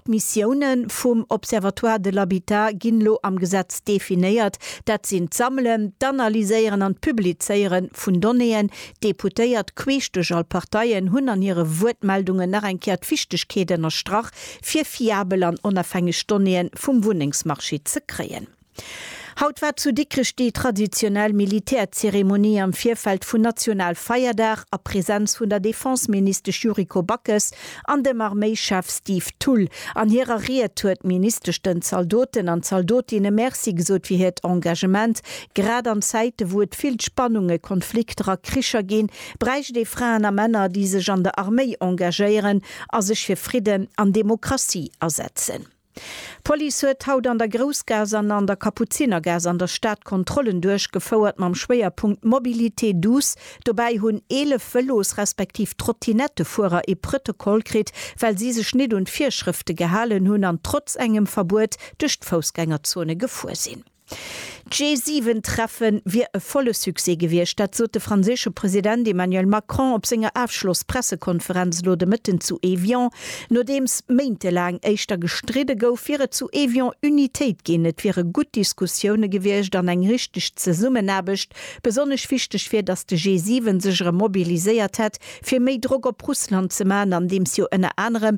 D'Missioune vum Observatoire de l'habitat ginn elo am Gesetz definéiert, dat sinn d'Sammelen, d'Analyséieren an d'Publizéiere vun Donnéeën. D'Deputéiert queesch duerch all Parteien hunn an hire Wuertmeldungen nach eng Kéier d'Wichtegkeet ënnerstrach, fir fiabel an onofhängeg Donnéeë vum Wunnengsmarché ze kréien. Haut war zu Dikrech déi traditionell Militärzeremonie am Virfeld vun Nationalfeierdag a Präsenz vun der Defenseministesch Yuriko Backes an dem Arméischef Steve Thull. An hirer Ried huet d'Ministesch den Zaldoten an Zaldotinne Merci gesot fir hiert Engagement. Grad an Zäite wou et vill Spannunge, Konflikter a Kricher ginn, bräicht ee Fraen a Männer, déi sech an der Arméi engagéieren a sech fir Fridden an Demokratie asetzen. D'Police huet haut an der Groussgaass an an der Kapuzinergaass an der Stad Kontrollen duerchgefouert mam Schwéierpunkt Mobilité douce. Dobäi hunn 11 Vëlos respektiv Trottinettefuerer ee Prëtokoll kritt, well si sech net un d'Virschrëfte gehalen hunn an trotz engem Verbuet duerch d'Foussgängerzone gefuer sinn. D'G7-Treffe wier e volle Succès gewiescht, dat sot de franséische President Emmanuel Macron op senger Afschloss-Pressekonferenz elo de Mëtten zu Evian. Nodeems méintelaang éischter gestridde gouf, wier et zu Evian Unitéit ginn, et wiere gutt Diskussioune gewiescht an eng richteg Zesummenaarbecht. Besonnesch wichteg wier, datt de G7 sech erëm mobiliséiert hätt, fir méi Drock op Russland ze maachen, andeems jo ënner anerem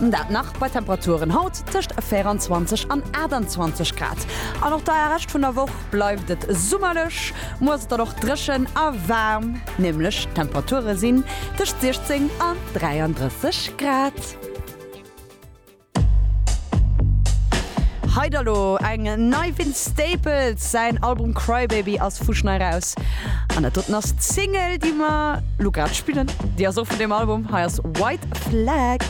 Dat nach bei Temperaturen haut tëscht 24 an 28 Grad. An och de Rescht vun der Woch bleift et summerlech. Muer ass et dann och dréchen a waarm, nämlech d'Temperature sinn tëscht 16 an 33 Grad. Hei da lo eng nei, Vince Staples säin Album Crybaby ass fuschn eraus an dat doten ass d'Single déi mer lo grad spillen, déi ass och vun deem Album. Hei ass White Flag.